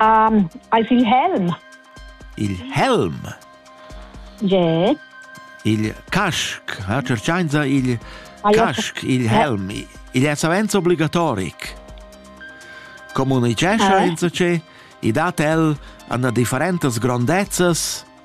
Um, eis il helm. Il helm? Je. Il casc, ha cercainza il casc, il helm. Il è savens obligatoric. Comunicescha eh? insacé, i dat el anna differentas grondezzas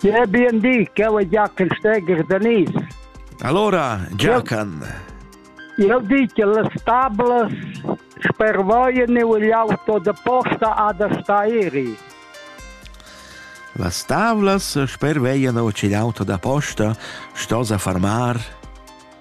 Ja, bien di, cheu è Giachen Steger da Nis. Allora, Giachen. Eu di che las tablas spervoien e l'auto de posta ha da stairi. Las tavlas sperveien o ce l'auto da posta sto sa farmar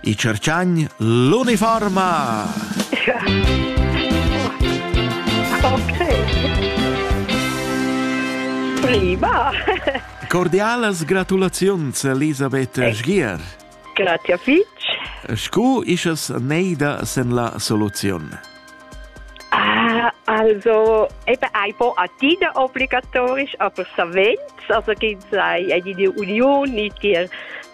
I cerciagn l'uniforma! ok. Prima! Cordialas gratulaziuns, Elisabeth Sgier. Grazie fitch. Scu ischas neida sen la soluziun? Ah, also, eben ein po atida obligatorisch, aber savens, also gibt es eine Union, nicht dir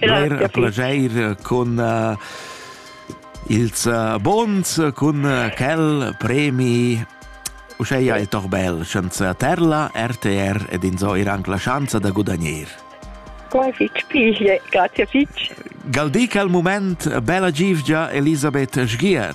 Eir plageir eh, cun uh, ils uh, bons, cun uh, quel premi Uscheia è toch bel, schanza terla, RTR ed insoir anche la chance da gudagnir. Come fitch piglie, grazie fitch. Galdic al moment bella givgia Elisabeth Sgier.